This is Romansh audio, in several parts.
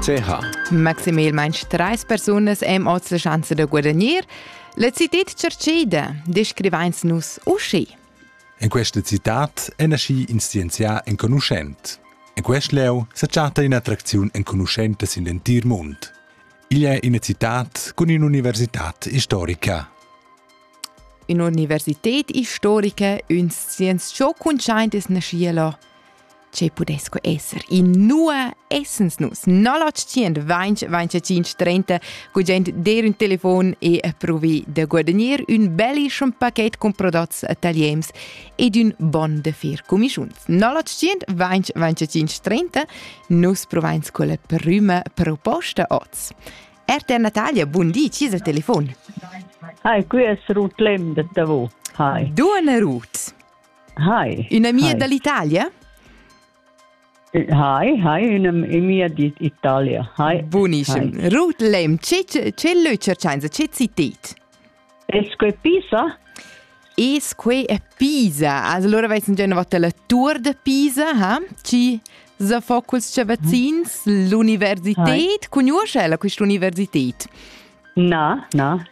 ch. Maximalmain trais persunas èn oz la schanza da guadagnir. La citad tschercida, descrivains nus uschi. En questa citad è naschi in scienzià enconuschent. En quest lieu sa chatta in'attracziun enconuschenta sin l'entir mund. Igl è ina citad cun in'università istorica. Un'università istorica, un scienzià cuntschaint es naschiela. che pudess que esser inua essens nus 0800 gugent der un telefon e provi de guadagnir un belli schon paket con prodots taliems ed un bon de fer comischuns 0800 nus provains quella prima proposta oz RTR Natalia, bun di, ci il telefon? Hi, qui es Ruth Lembert da vo. Hi. Duana Ruth. Hi. Una mia hi. dall'Italia? Eh, hi, hi, una mia d'Italia. Hi. Buonischem. Hi. Ruth Lem, ce leu cercainsa, ce citit? Esque Pisa? Esque è Pisa. Allora avessi già una volta la tour de Pisa, ha? Ci za focus cavazzins, l'università. Conosce ella questa università? No, no.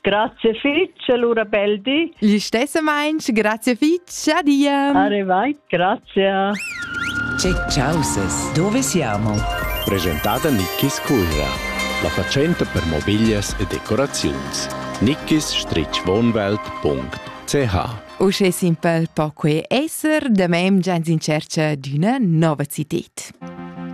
Grazie fitg, allura bel di. Gli stesso Mainz, grazie fitch, adia. Arrivai, grazie. Check causes, dove siamo? Presentata Nickis Curra, la facente per mobiglias e decoraziuns. nickis-wohnwelt.ch Uschè simpel po quei esser, da mem gens in cerca d'üna nova cited.